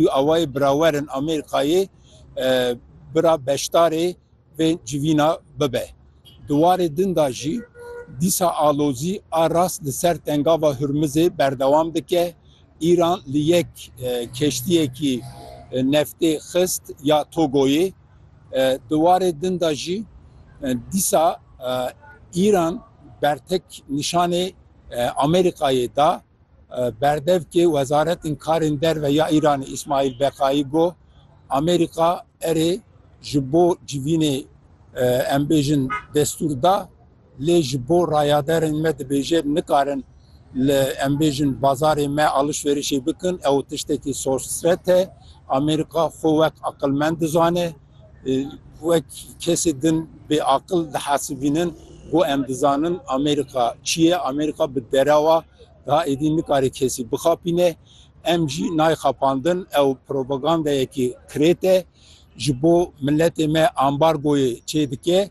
û awayê birawerin Amerîkayê bira beşdarê vê civîna bibe. Di warê din de jî dîsa alozî a rast li ser Tengava Hurmizê berdewam dike. Îran li yek keştiyekî neftê xist ya Togoyê. Di warê din de jî dîsa Îran bertek nîşanê Amerîkayê da. Berdevkê Wezaretên Karên Derve ya Îranê Îsmaîl Beqayî got, Amerîka erê ji bo civînê em bêjin destûr da, lê ji bo rayaderên me dibêje nikarin li em bêjin bazarê me alişverişê bikin, ew tiştekî sorsret e. Amerîka xwe wek aqilmend dizane. wek kesê din bêaqil dihesibînin ku em dizanin Amerîka çi ye, Amerîka bi derewa da êdî nikare kesî bixapîne. Em jî nayê xapandin, ew propagandayekî kirêt e, ji bo miletê me ambargoyê çê dike,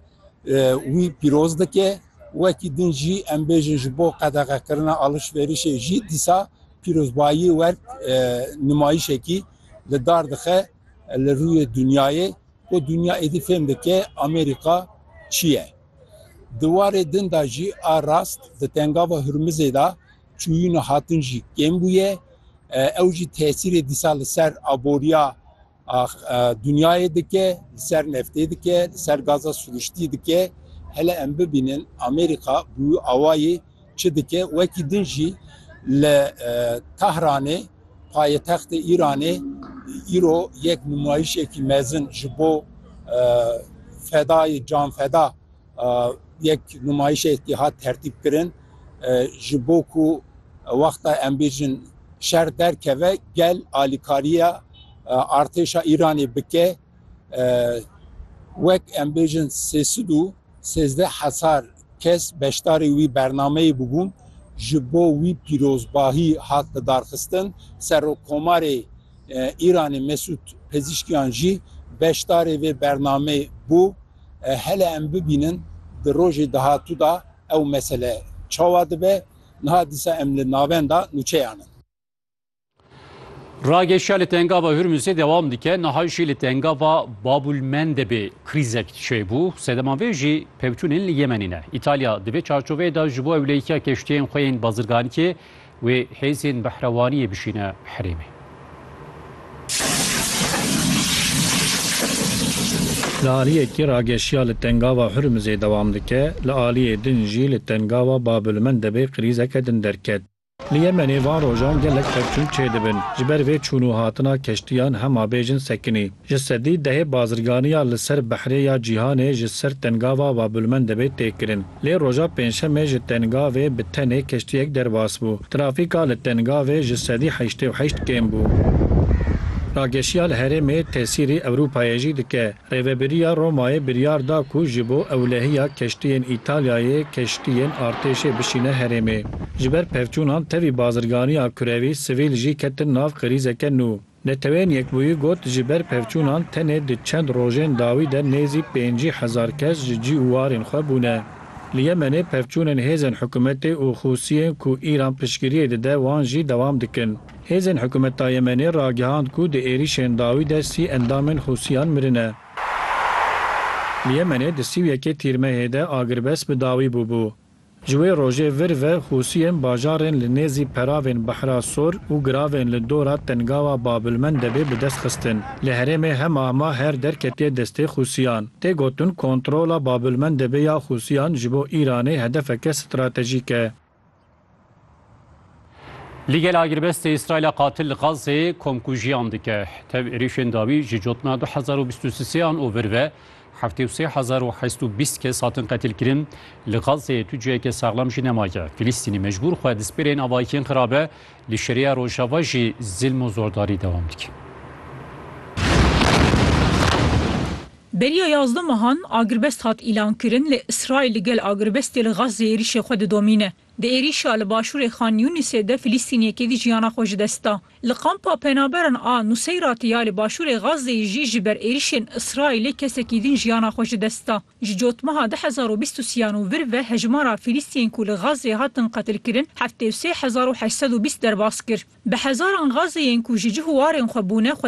wî pîroz dike. Wekî din jî em bêjin ji bo qedexekirina alişverîşê jî dîsa pîrozbayî wek nimayîşekî li dar dixe. Li rûyê dinyayê ku dinya êdî fêm dike Amerîka çi ye. Di warê din de jî a rast di tengava Hurmizê de çûyîna hatin jî kêm bûye. Ew jî tesîrê dîsa li ser aboriya dinyayê dike, li ser neftê dike, li ser gaza siruştî dike. Hele em bibînin Amerîka bi wî awayî Çi dike? Wekî din jî li Tahranê payetextê Îranê îro yek nûmayîşekî mezin ji bo fedayê canfeda yek nûmayîşekî hat tertîbkirin ji bo ku wexta em bêjin şer derkeve gel alîkariya artêşa Îranê bike wek em bêjin sê sed û Sêzdeh hezar kes beşdarî wî bernameyê bûbûn, ji bo wî pîrozbahî hat lidarxistin, Serokkomarê Îranê Mesûd Pezîşkiyan jî beşdarê vê bernameyê bû. Hele em bibînin di rojê dahatû de ew mesele çawa dibe. Niha dîsa em li navenda nûçeyan in. Ragêşiya li tengava Hürmüzê dewam dike, niha jî li tengava Babulmendebê krîzek çêbû. Sedeman vê jî pevçûnên li Yemenê ne. Îtalya di vê çarçoveyê de ji bo ewlehiya keştiyên xwe yên bazirganiyê wê hêzên behrewaniyê bişîne herêmê. Li aliyekî ragêşiya li tengava Hürmüzê dewam dike, li aliyê din jî li tengava Babulmendebê krîzeke din derket. Li Yemenê van rojan gelek pevçûn çêdibin. Ji ber vê çûn û hatina keştiyan hema bêjin sekinî. Ji sedî dehê bazirganiya li ser behrê ya Cîhanê ji ser tengava Babulmende bê tê kirin. Lê roja pêncşemê ji tengavê bi tenê keştiyek derbas bû. Trafîka li tengavê ji sedî heştê û heşt kêm bû. Rageşiya li herêmê tesîrî Ewropayê jî dike. Rêveberiya Romayê biryar da ku ji bo ewlehiya keştiyên Îtalyayê keştiyên artêşê bişîne herêmê. Ji ber pevçûnan tevî bazirganiya kurewî sivîl jî ketin nav krîzeke nû. Neteweyên Yekbûyî got ji ber pevçûnan tenê di çend rojên dawî de nêzî pêncî hezar kes ji cî û warên xwe bûne. Li Yemenê pevçûnên hêzên hikûmetê û Hûsiyên ku Îran piştgiriyê dide wan jî dewam dikin. Hêzên hikûmeta Yemenê ragihand ku di êrîşên dawî de sî endamên Hûsiyan mirine. Li Yemenê di sî û yekê Tîrmehê de agirbest bi dawî bûbû. Ji wê rojê vir ve Hûsiyên bajarên li nêzî peravên Behra Sor û giravên li dora tengawa Babilmendebê bi dest xistin. Li herêmê hemahma her derketiye destê Hûsiyan. Tê gotin kontrola Babilmendebê ya Hûsiyan ji bo Îranê hedefeke stratejîk e. Li gel agirbestê Îsraîla qatil li Xazzê komkujiyan dike. Tev êrişên dawî ji cotna du hezar û bîst û sêyan û vir ve heftê û sê hezar û heşt û bîst kes hatin qetilkirin. Li Xazzê tu ciheke saxlam jî nemaye. Filîstînî mecbûr xwe di spêrên avayikên xirabe li Şeriya Rojava jî zilm û zordarî dewam dike. Beriya yazdeh mehan agirbest hat îlankirin lê Îsraîl li gel agirbestê li Gazze êrîşê xwe didomîne. Di êrîşa li başûrê Xan Yûnisê de Filîstîniyekê dî jiyana xwe ji dest da. Li kampa penaberan a Nuseyratê ya li başûrê Gazzeyê jî ji ber êrîşên Îsraîlê kesekî din jiyana xwe ji dest da. Ji cotmeha du hezar û bîst û sî yan û vir ve hejmara Filîstiyên ku li Gazzeyê hatin qetilkirin heftê û sê hezar û heşt sed û bîst derbas kir. Bi hezaran Gazzeyên ku ji cih û warên xwe bûne